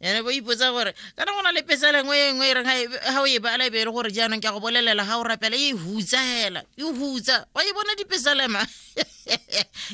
ene bo ipotsa gore ka na go na le pesa lengwe e nngwe e reng ga o e bala e be e le gore jaanong ke a go bolelela ga o rapela e hutsa hela e hutsa wa e bona dipesalema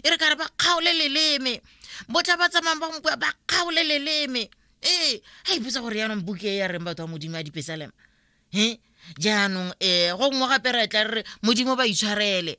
e re kare ba kgaole leleme botlha ba tsamayng ba mokua ba kgaole leleme ee ga ipotsa gore jaanong buke e ya reng batho ba modimo a dipesalema e jaanong um go nngwe gape re tla re re modimo ba itshwarele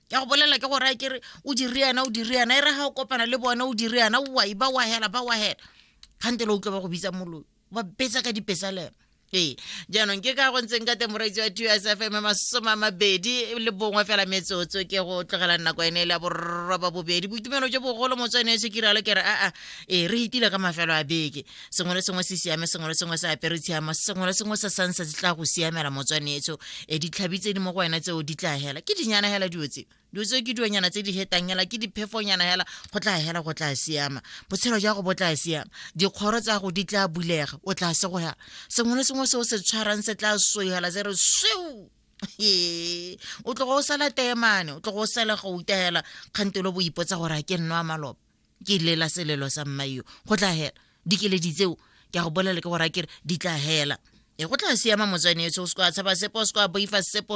ya go bolela ke gore a kere o dire yana o dire yana e re ga o kopana le bone o dire yana wa ba wa hela ba wa hela kgante le utlwa ba go bitsa moloi ba betsa ka dipesalelo ee jaanong ke ka go ntseng ka temoraitse wa two s f m masome a mabedi le bongwe fela metsotso ke go tlogela nako ene e le ya borroba bobedi boitumelo jo bogolo motswene e se kiralo ke re aa ee re itile ka mafelo a beke sengwe le sengwe se siame sengwe le sengwe se apere tshiama sengwe le sengwe se sansa se tla go siamela motswanetso e ditlhabi tse di mo go wena tseo di tla hela ke dinyana hela dilo tseo dilo tseo ke dionyana tse di hetang hela ke diphefonyana hela go tla hela go tla siama botshelo jwa go bo tla siama dikgoro tsa go di tla bulega o tla se go hela sengwe le sengwe seo se tshwarang se tla soihela se re sweu o tlogo o sala temane o tlogo o sala go utela kgantelo boipotsa gore a ke nno a maloba ke lela selelo sa mmaio go tla hela dikeledi tseo ke a go bolela ke gore a kere di tla hela e go tla siama motswane etso o se ko a tshaba sepo o se ko a boifa sepo